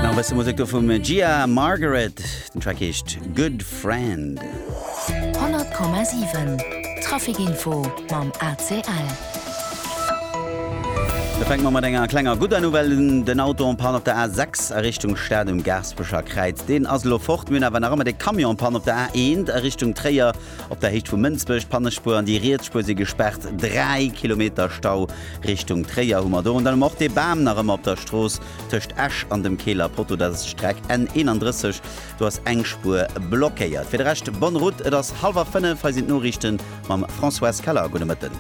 Nach wësse Musek do vum Gia Margaret, den Track heescht Good Friend. 100,7 Traficinfo mam ACL. Da fänke mer mat enger klenger gudder Nouvelle un, Den Auto en Panne op der A6 a Richtung Stad um Gaaspecher Kräiz, deen ass elo fort. Mir hunn awer nach ëmmer de Camion en Panne op der A1 a Richtung Tréier. Op der Héicht vu Mënsbech, d'Pannespuer an déi riets Spuer si gespaart. 3 Kilometer Stau Richtung Tréier hu mer do. An dann hu mer och dee Bam nach ëmmer op der Strooss tëscht Esch an dem Keeler Poteau. Dat ass d'Streck N 31, do ass eng Spuer blockéiert. Fir de Rescht bonne route. Et ass hallwer 5, hei sinn d'Noriichte mam Françoise Keller. Gudde Mëtten.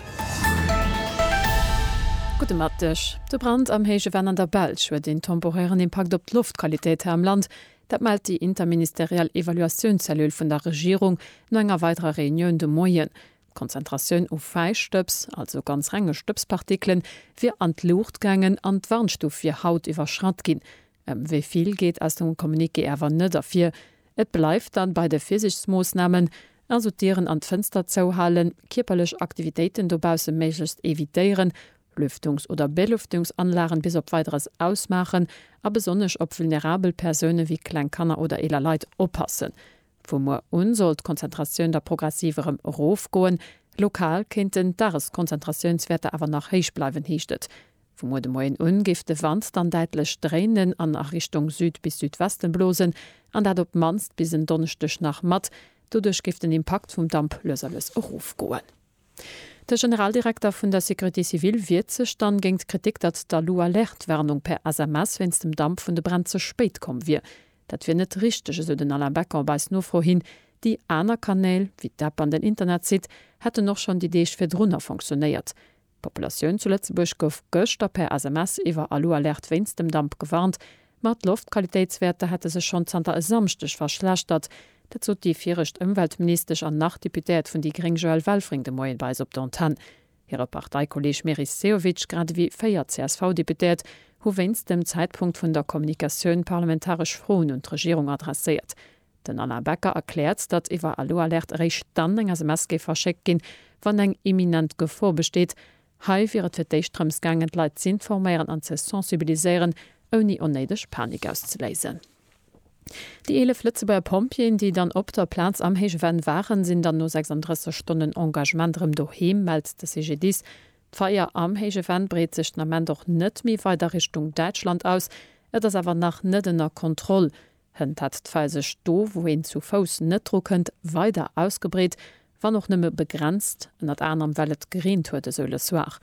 Gudde Mëtteg. De Brand am Héije Venn an der Belsch huet een temporären Impakt op d'Loftqualitéit hei am Land. Dat mellt déi interministeriell Evaluatioun-Cellule vun der Regierung no enger weiderer Reunioun de Moien. D'Konzentratioun u Fäistëbs, also ganz renge Stëbspartikelen, wier an d'Luucht gaangen an d'Warnstuf wier haut iwwerschratt ginn. Ëm wéi vill geet aus dem Communiqué awer net ervir. Et bleift dann bei de Virsiichtsmoossnamen, also d'Dieren an d'Fënster zouhalen, kierperlech Aktivitéiten dobausse méiglechst evitéieren, Lüftungs oder Belüftungsanlagen bis op Weideres ausmaachen a besonnesch op vulnerabel Persounen wéi kleng Kanner oder eeler Leit oppassen. Vu muer un soll d'Konzentratioun da progressiv erëm erofgoen. Lokal kéinten d'Dageskonzentratiounswäerter awer nach héich bleiwen, heescht et. Vu muer de Moien un géif de Wand dann däitlech dréinen an a Richtung Süd bis Südwesten blosen, an dat op d'mannst bis en Donneschdeg nach mat. Doduerch géif den Impakt vum Damp lues a lues erofgoen. De Generaldirekter vun der Sécurité civile wiert sech dann géint d'Kritik, datt d'Alu Alerte Warnung per SMS wéinst dem Damp vun de Bränn ze spéit komm wier. Dat wier net richteg, esou den Alain Becker op eis Nofro hin. Déi aner Kanäl, wéi d'App an den Internetsite, hätten och schonn déi Deeg virdrunner fonctionéiert. D'Populatioun zu Lëtzebuerg gouf gëschter per SMS iwwer Alu Alerte wéinst dem Damp gewarnt. Ma d'Loftqualitéitswäerter hätte sech schonn zanter e Samschdeg verschlechtert. Dat sot déi viregt Ëmweltministesch an nach Deputéiert vun déi gréng Joëlle Welfring de Moien bei eis op der Antenn. Hire Parteikolleeg Meris Sehovic, grad ewéi véier CSV-Deputéiert, hu wéinst dem Zäitpunkt vun der Kommunikatioun parlamentaresch Froen un d'Regierung adresséiert. Den Alain Becker erkläert, datt iwwer Alu-Alerte eréischt dann eng SMS géif verschéckt ginn, wann eng imminent Gefor besteet, Hei wier et fir d'éischt drëms gaangen, d'Leit z'informéieren an ze sensibiliséieren, ouni onnéideg Panik auszeléisen. Déi 11 Lëtzebuerger Pompjeeën, déi dann op der Plaz am héije Venn waren, sinn dann no 36 Stonnen Engagement erëm doheem, mellt de CGDIS. D'Feier am héije Venn breet sech den Ament och net méi weider Richtung Däitschland aus. Et ass awer nach net ënner Kontroll, Hënt hat d'Fäll sech do, wou een zu Fouss net dru kënnt, weider ausgebreet, wann och nëmme begrenzt, ënnert anerem well et gereent huet, esou Le Soir.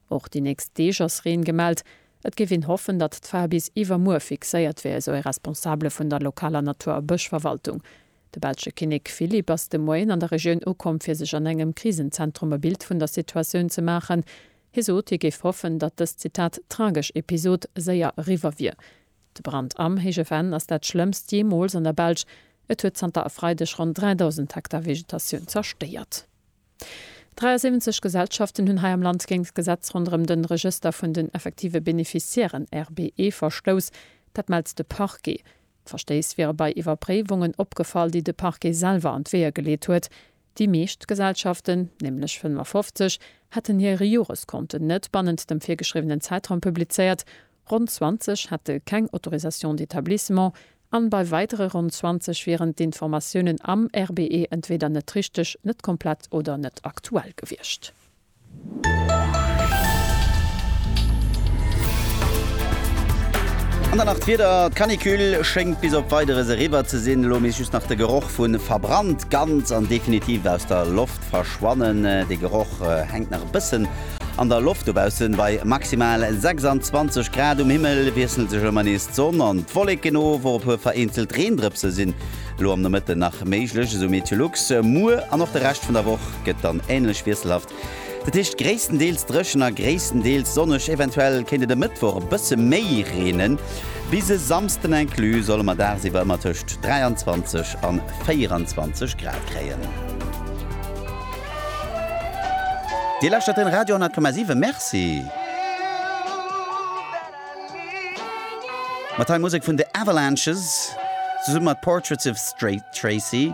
Och déi nächst Deeg ass Reen gemellt. Et géif een hoffen, datt d'Fäll bis iwwermuer fixéiert wier, esou e Responsabele vun der lokaler Natur a Bëschverwaltung. De belsche Kinnek Philippe ass de Moien an der Regioun ukomm, fir sech an engem Krisenzentrum e Bild vun der Situatioun ze maachen. Hie sot, hie géif hoffen, datt dës, Zitat, tragesch Episod séier eriwwer wier. De Brand am Héije Venn ass dat schlëmmst jeemools an der Belsch. Et huet zanter e Freideg ronn 3.000 Hektar Vegetatioun zerstéiert. 73 Gesellschaften hunn hei am Land géint d'Gesetz ronderëm de Regëster vun den effektive Beneficiairen, RBE, verstouss. Dat mellt de Parquet. D'Verstéiss wiere bei Iwwerpréiwungen opgefall, déi de Parquet selwer an d'Weeër geleet huet. Déi meescht Gesellschaften, nämlech 55, hätten hir Joreskonten net bannent dem virgeschriwwenen Zäitraum publizéiert, ronn 20 hätte keng Autorisation d'établissement an bei weidere ronn 20 wieren d'Informatiounen am RBE entweeder net richteg, net komplett oder net aktuell gewiescht. An dann nach d'Wieder, D'Canicule schéngt bis op Weideres eriwwer ze sinn, elo misst just nach de Geroch vu verbrannt ganz an definitiv aus der Loft verschwannen. De Geroch hänkt nach e bëssen an der Loft, dobaussen bei maximal 26 Grad. Um Himmel wiesselt sech ëmmer nees d'Sonn an d'Wolleken of, och e puer vereenzelt Reendrëpse sinn elo am Nomëtten nach méiglech, esou Meteolux. Muer an och de Rescht vun der Woch gëtt dann änlech wiesselhaft, dat heescht gréisstendeels dréchen a gréisstendeels sonneg. Eventuell kéint et e Mëttwoch e bësse méi reenen. Bis e Samsden inclus solle mer dagsiwwer ëmmer tëscht 23 a 24 Grad kréien. Dir lauschtert den Radio 10,7. Merci mat hei Musek vun The Avalanches zesumme mat Portraits of Tracy.